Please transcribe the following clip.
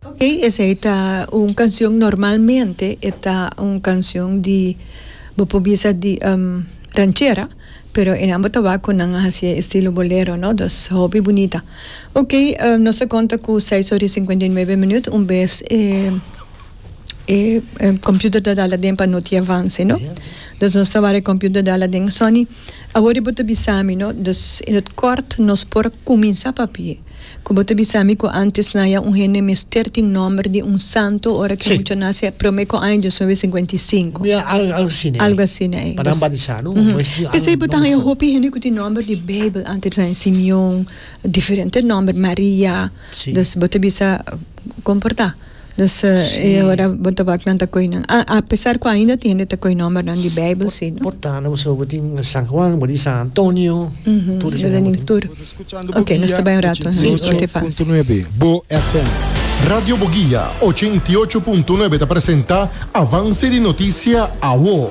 Ok esei ta un kanshion normalmente e ta un kanshion di bo por bisa di ranchera pero e nan bo ta wak ku nan a hasié estilo bolero no dus hopi bunita ok nos ta konta ku seis ora i sinkuenta i nuebe minut un bes e kompiuter ta dal aden pa no tin avanse no dus nos ta wak e kompiuter dal aden sòni awor i bo ta bisa mi no dus in het kort nos por kuminsá papia. Cu bo ta bisa mi cu antes na ya un hende mester tin nomber di un santo ora ki mucha nace prome cu aña dios nueve cincuenta y cinco. Algo asina ey. Pa nan batisa no? P'esey bo ta haya hopi hende cu tin nomber di bijbel antes na e Simeon diferente nomber Maria. Bo ta bisa comporta. Nos ta e ora bo ta wak nan ta koy nan a a pesar ku ainda tin hende ta koy nòmbernan di Beibel si no. Portana bo sabi bo tin San Juan bo di San Antonio tur esei nan bo tin. Oke nos ta bai un rato na Spotify. Radio Boguia ochenta i ocho punto nuebe ta presenta Avance di Noticia, awo.